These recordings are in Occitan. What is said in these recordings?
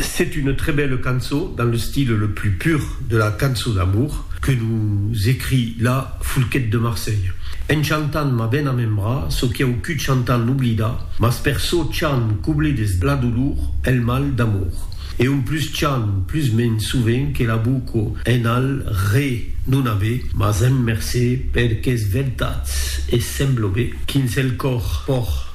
C'est une très belle cançon dans le style le plus pur de la cançon d'amour que nous écrit la Foulquet de Marseille. En chantant m'a ben amembra çò qui au cut chantant l'oblida, mas per çò chant qu'oblides la dolor, el mal d'amour. E un plus chant plus mens sovent que la boco en al re non ave, mas en mercé per qu'es vertats e semblo be quins el còr pòr.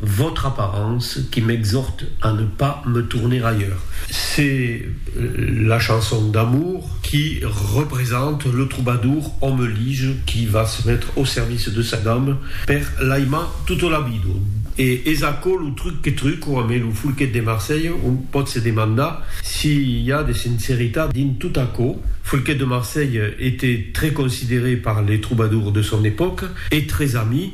Votre apparence qui m'exhorte à ne pas me tourner ailleurs. C'est la chanson d'amour qui représente le troubadour homme lige qui va se mettre au service de sa dame per l'aimar tota la vida. E es aquò lo truc que truco amé lo Folquet de Marselha, on pòt se demandar si i a de sinceritat dins tot aquò. Folquet de Marselha était très considéré par les troubadours de son époque et très ami.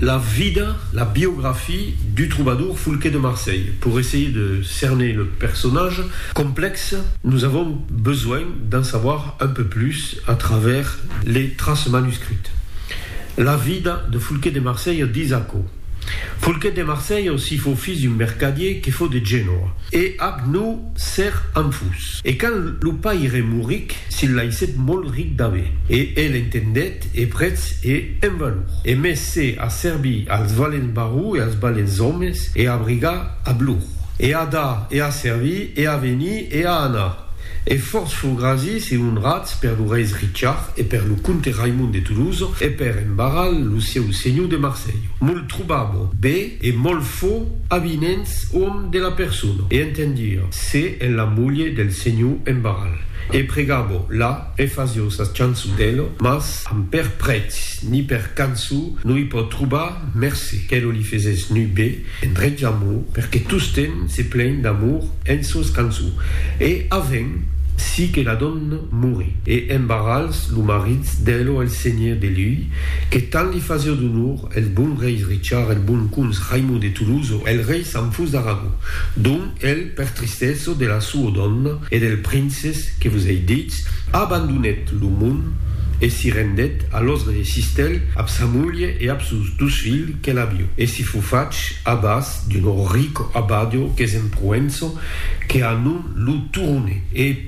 La vida, la biographie, du trobador Foulquet de Marseille. Pour essayer de cerner le personnage complexe, nous avons besoin d'en savoir un peu plus à travers les traces manuscrites. La vida de Foulquet de Marseille ditz aquò, Foulquet de Marseille aussi fau fils d'un mercadier que fau de Genoa, e ac nau ser anfus. E quand lo paire mouric, s'il laissèt molt ric d'aver. E el entendèt. e prètz e en valor, e mès se a servir als valents barrou e als balents òmes, e a brigar ab lor, e a dar, e a servir, e a venir, e a anar, e fòrts fur grasis e onrats per lo reis Richard, e per lo comte Raimond de Toulouse, e per en Barral, lo sieu senhor de Marselh. Molt trobabo be e molt fo avinents òm de la persona, e entendir se en la mulher del senhor en Barral, e pregabo la, E fasio sa chançon d'Elo, mas amb per prètz ni per canço no i pò trobar mercé qu'Elo li fesés nu be endretz a mo, perque tostemp se plèin d'amor en sos canço. E avèn si que la donna morí, e en barrals lo maritz d'Elo el senhier de lui, que tant li fasio d'onor, el bon reis Richard, el bon cons Raimond de Toulouse o el rei Sanfus d'Aragó, dont el. Per tristesa de la sua dòna e del princes que vos ei ditz, abandonèt lo mond e si rendèt a l'òsga de Cistèl ab sa mulher e ab sos dus filhs qu'el avió, e si fo fach abàs d'un rico abadio qu'es en Proença, que a nom lo Turone, e.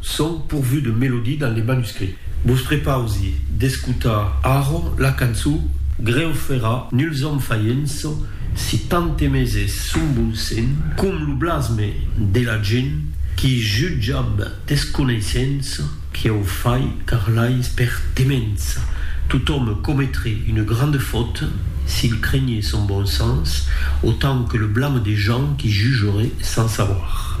Son pourvus de melodie dans les manuscrits. Vos prepausi d'escotar arro la cançon Greu fera nuls òm faienço si tantemés es son bon sen com lo blasme de la gent qui jutjab desconeissença qui au fai car l'ais per temença. Totòm cometre une grande faute s'il crenhé son bon sens autant que le blame des gens qui jugeraient sans savoir.